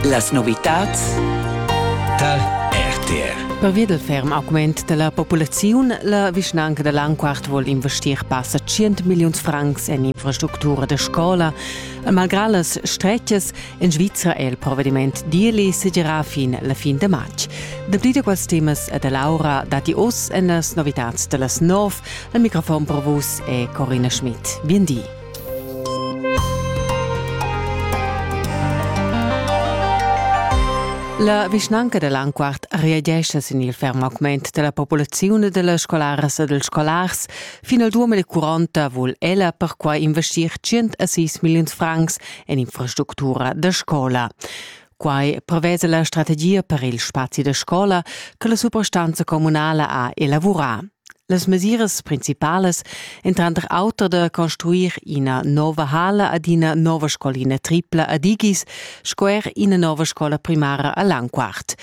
Las novitads tar RTR. Pervia del ferm augment della populaziun, la vischnanca da Langquart vuol investir passa 100 milliuns francs en infrastructura de scola. E malgrà las stretgas en Svizzera è il provvediment Dieli segerà fin la fin de març. Dapli de quels temas e de Laura dati oss en las novitads de las 9. Al microfon per vus è Corina Schmidt. Bien di. La vischnanca da Lanquart reagescha sin il ferm augment della populaziun e dellas scolaras e dels scolars. Fin al 2040 vul ella perquai investir 106 milliuns francs en infrastructura da scola. Quai prevesa la strategia per il spazi da scola che la suprastanza communala ha elavurà. Las mesiras principalas èn tranter auter da construir ina nova hala ad ina nova scolina tripla a Digis sco er ina nova scola primara a Langquart.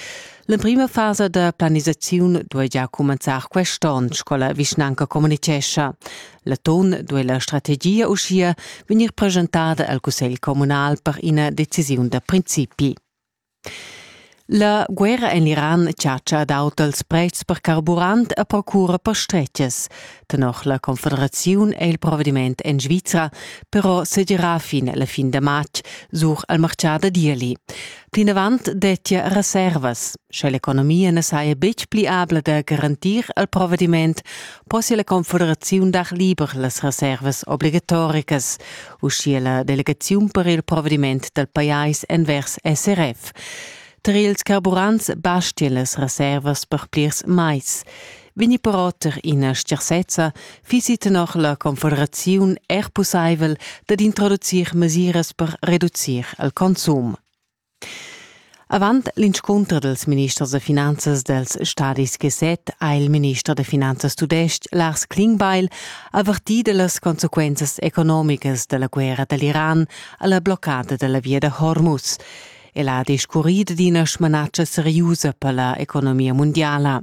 L'emprima fasa da planisaziun duai già cumenzar quest'onn, sco la vischnanca communitgescha. L'atun duei la strategia uschia vegnir presentada al cussegl communal per ina decisiun da principi. La guerra en l'Iran chatscha ad aut els prezs per carburant e procura per stretches. Tenor la Confederaziun è il provvediment en Svizra però sedirà fin la fin da matg sur al martgà da Dieli. Plinavant dettia reservas. Sche l'economia na saja betg pli abla da garantir al provvediment, possia la Confederaziun dar liber las reservas obligatoricas, uschia la delegaziun per il provediment dal pajais envers SRF. Tar ils carburants bastian las reservas per plirs mais. Vegni però tar ina stgarsezza, fissi tenor la Confederaziun er pussaivel dad introducir mesiras per reducir il consum. Avant l'inscunter dals ministers da finanzas dals stadis G7 ha il minister da finanzas tudestg Lars Klingbeil avertì da las consequenzas economicas da la guerra da l'Iran a la bloccada da la via da Hormuz. El ha discurrì dad ina smanatscha seriusa per la economia mundiala.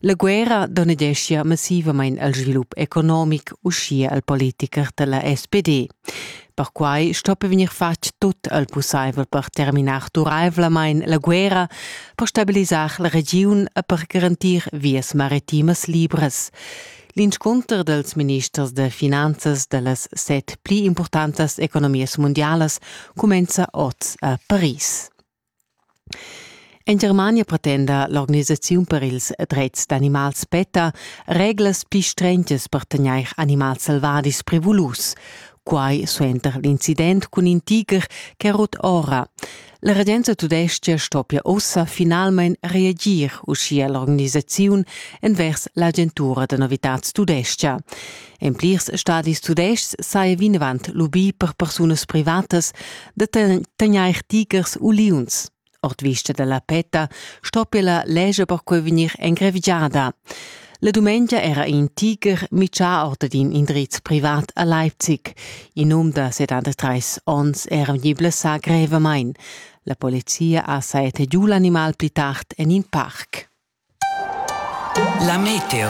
La guerra donedeschia massivamain al svilup economic, uschia al politicher da la SPD. Perquai stoppa vegnir fatg tut el pussaivel per terminar duraivlamain la guerra, per stabilisar la regiun e per garantir vias maritimas libras. L'inscunter dals ministers da finanzas da las set pli impurtantas economias mundialas cumenza oz a Paris. En Germania pretenda l'organisaziun per ils dretgs d'animals PETA reglas pli strentas per tegnair animals selvadis prevulus. Quai suenter l'incident cun in tiger che è rut ora. La regenza tudestga stoppia ussa finalmain reagir, uschia l'organisaziun envers l'agentura da novitads tudestga. En plirs stadis tudestgs saja vinavant lubì per persunas privatas da tegnair tigers u liuns. Ord vista da la PETA stoppia la legge perquai vegnir engrevigiada. La dumengia era in tigher mitschà or d'in indriz privat a Leipzig. In um da 73 onns era vegnì blessà grevamain. La polizia ha saetta giù l'animal pli tard en in parc. La meteo.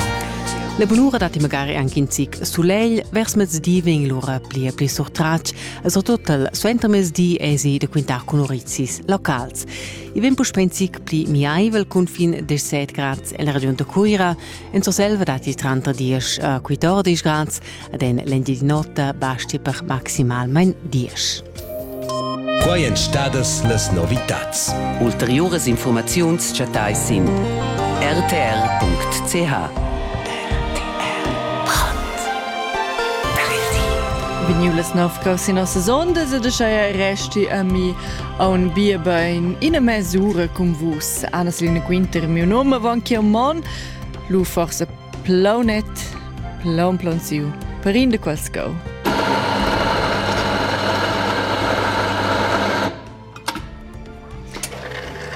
La bunura dat magari anche in zic solegl, vers mezdi vegn l'ora pli e pli surtratg, e soprattutto suenter mezdi esi da quintar con orizis locals. I vegn puspè in zic pli miaivel cun fin 17 grads en la regiun da Cuira, en Surselva datti tranter 10 e 14 grads, ed en l'Engignota basti per maximalmain diesch. Quai èn stadas las novitads. Ulteriuras informaziuns chattais sin rtr.ch. Vegniu las nov cos ina sesonda se de scheia resti a mi a un bierbein ina mesura cum vus. Anna Selina Quinter, miu nome van chiamon, lu forse Plaunet, plaun plaun siu, per in de quels cau.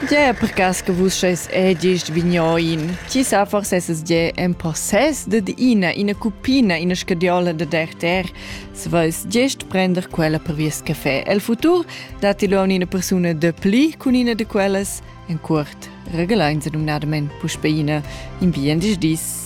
Gie, per cas che vus scheis edist vignoin, ti sa forse esses gie en possess de ina, ina cupina, ina scadiola de derter, se veis gest prender quella per vies caffè. El futur dati lu a una persuna de pli cun ina de quellas, En cuort regalain se numnadamain puspei ina in bien dis dis.